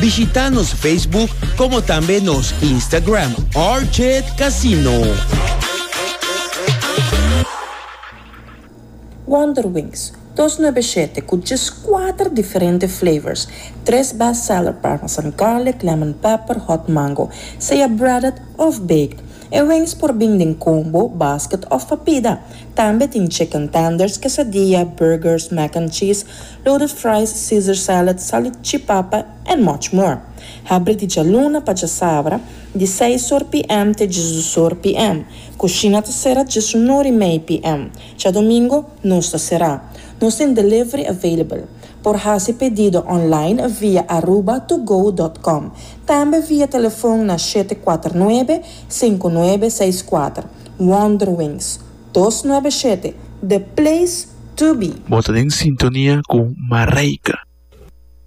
Bishita nos Facebook como tambe nos Instagram Orchid Casino. Wonder Wings, dos nuebe shete cu djes cuater diferente flavors, tres best seller parmesan garlic, lemon pepper, hot mango, sea breaded of baked. E wings por bin den combo, basket of pa pida. Tambe tin chicken tenders, quesadilla, burgers, mac and cheese, Loaded fries, Caesar salad, salad chi papa and much more. Habri di djaluna pa djasabra, di seis or PM te djesdos or PM. Kushina ta sera djesun or i mei PM. Djadomingo nos ta sera. Nos tin delivery available. Por hasi pedido online via aruba to go dot com. Tambe via telefon na shete kuater nuebe, sinku nuebe seis kuater. Wonderwings. dos nuebe shete The Place To Be. Bo ta den sintonia cu Mareika.